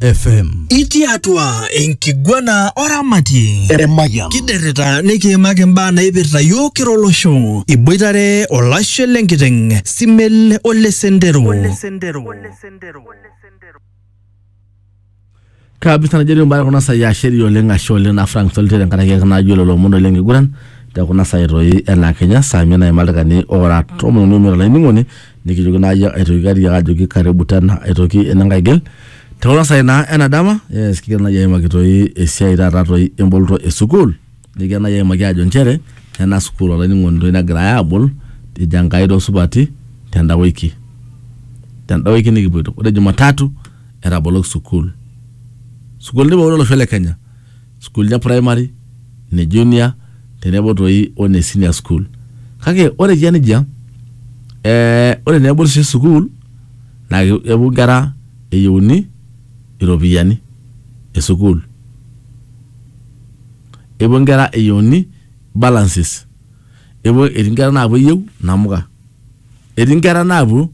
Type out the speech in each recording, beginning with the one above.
FM. Itii atua enkiguana oramatie Emayian. kiderrita nikiimaki imbaa naipirta yiok kira olosho iboitare olashe lenkiteng simel ole sendero kabisa najoito mbaya kuna sai asheri oleng ashe oleng na frank solite tenkaraki ake najo lelo omon oleng kiguran te kuna sai toi ena kenya saa mia naimalika ni ora tomon uni omiet olainining'oni nikijoki naa yie aitoki katiak ajoki karibu tena aitoki enenkai gil te kuna sai naa ena dama yes kigira naaji aimaki toi esiai taata toi emboloto e sukuul nikigira naaji aimaki ajo nchere ena sukuul olainining'oni toi negirai aabol ejo Enkai toosupati tenda wiki tenda wiki nikipuoito ore Jumatatu etaboloki sukuul sukuulini pookin olosho le Kenya sukuulini e primary, ne junior tenebo toi o ne senior school. Kake ore eyia nejia eh ore naa ebol oshi sukuul naa kepuo inkera eyieuni iropiyiani e sukuul. Epuo inkera eyieuni balances, epuo etii inkera naapuo eyieu inamuka, etii inkera naapuo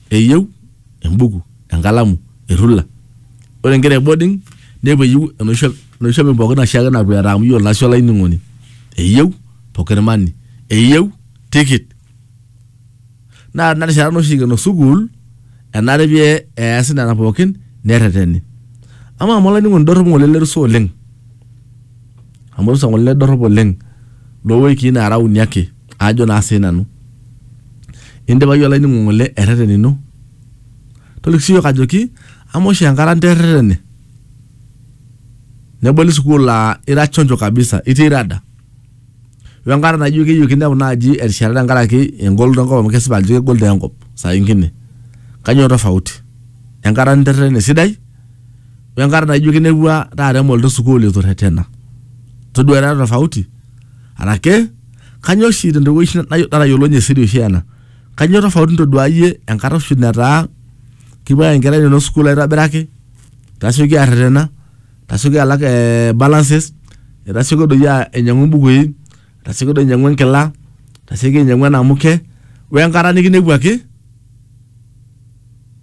eyieu embuku. enkalamu errula ore inkera e boarding nepuo eyieu enoshi enoshi shopping pookin oshiake napuo eeta amu yiolo naa sii olainining'oni eyieu pocket money eyieu tikit naa tina rishata naa oshi eikeno sukuul enare pee easi nena pookin nerreteni amaa amu olainining'oni dorropu ng'ole ele rusa oleng amu orusa ng'ole ele dorrop oleng lowikii naara uni ake aajo naa siinanu indipa iyie olainining'oni ng'ole erreten ino. toliki siyiok ajoki amu oshi enkata nterretene neboli sukuul aa ira chonjo kabisa itii rada wenkata naijo keyieu kinepu naaji erishata tenkaraki engoloto enkop amu kesipa ajo kegol taa enkop saa ingine kanyoo tofauti enkata ninterretene esidai wenkata naijo kinepua taata emoloto esukuul itu irretena todua ira tofauti arake kanyoo oshi tentoki oshi natayiolounye siri oshi ena. Kanyoo tofauti ntoduaa iyie enkata oshi netaa kepuo aaya nkera inonok sukuul aitobiraki, tasioki arretena, tasioki alak eeh balances, tasioki doi ainyang'u imbukui, tasioki doi ainyang'u enkila, tasioki ainyang'u enamuke wenkata nikinepuaki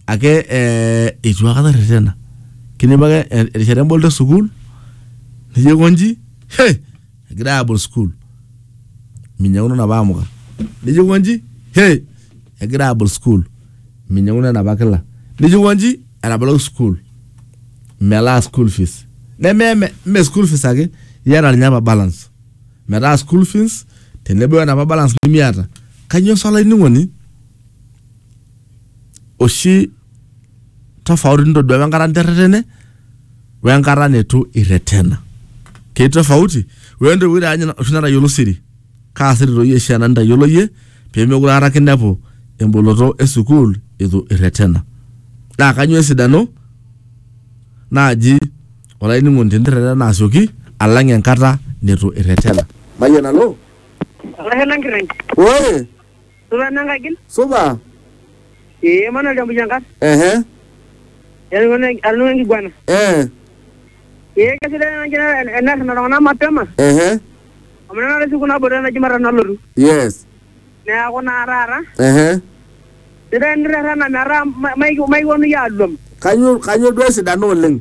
ake eeh eitu akata irretena. Kinepu ake erishata emboloto esukuul nijo aikonji hei! egira abol school minyanguno napa amuka nijo konji he egira abol school minyanguno enapa kila nijo konji etaboloki school melaa school fees neme me, me school fees ake iyata ninye apa balance metaa school fees tenebo enapa balance nimiata kanyoo sa olainining'oni oshi tofauti nitodua apa enkata niterretene wenkata nitu irretena ketii tofauti wentoiwuoi taa ninye oshi natayiolo siri kaa siri toi oshi ena nitayiolo iyie pemekure aikata kinepu emboloto esukuul itu irretena naa kanyio esidano naaji olainining'oni tenirretena asioki alang enkata nitu irretena mayianalo Olashe lang kirriny. ore Supa enankagil. Supa. Ee Emmanuel Tembuchankat. Ehe. Atoning'o enkiguana. Eh. Ee kesidai ena njere enerrena iltung'anak mapema. Ehe. Amu tenakata esiku naboita ena jumatatu nalotu. Yes. Neeku naa taata. Ehe. Sidai enirrerrena metaa maikiponu iyie aluam. Kanyo kanyo duo esidano oleng?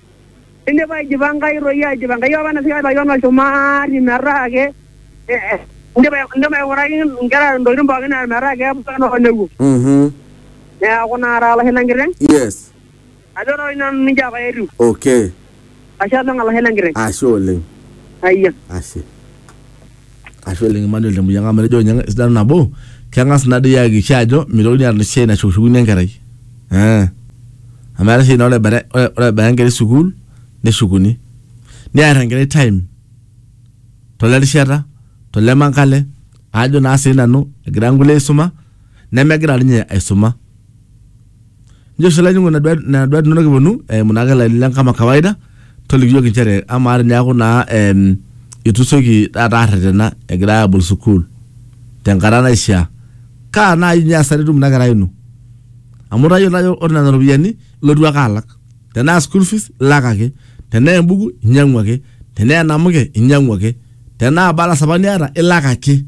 Ninepu aijipa Enkai toi aijipa Enkai apa nasikae Yon olchumati metaa ake eh, indipa indipa aing'uraki inkera intokitin pookin naa metaa kepuo enaa olewuo Mhm. neeku naa taata olashe lenkiteng Yes. ajo toi nanu ninche apa etiu Okay. ashe oleng olashe lenkiteng Ashe oleng. ayia Ashe. ashu eleng Emmanuel Temuyianga amu etejo ninye esidano nabo keng'as ina dii ayakikisha ajo mitokini aata esiai nashukushukuni enkerai eh. amu eetae esiai naa ore ebaya ore- ore ebaya enkerai sukuul neshukuni niar enkerai time tole rishata tole mankale aajo naa siinanu egira nkulie aisuma nemegira ninye aisuma. Njo oshi olainining'oni nena duat nena duat inonok eponu eimu naake ilainini lang' kama kawaida, toliki iyiok inchere amaa teneeku naa em itu isioki taata arretena egirai aabol sukuul tenkata naishaa, kaa nai inye hasara etum ina kerai ino? Amu itayiolo ajo ore nena ropiyiani ilotu ake alak. Tenaa school fees ilak ake, tenaa embuku inyang'u ake, tenaa enamuke inyang'u ake, tenaa balance apa niata ilak ake.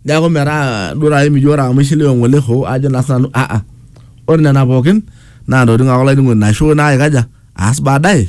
neeku metaa duo taata emijo ore amu ishiliwe ng'ole hoo ajo naa sinanu ah ah ore nena pookin naa ntokitin ake olainining'oni naisho naa aikaja aas baadaye.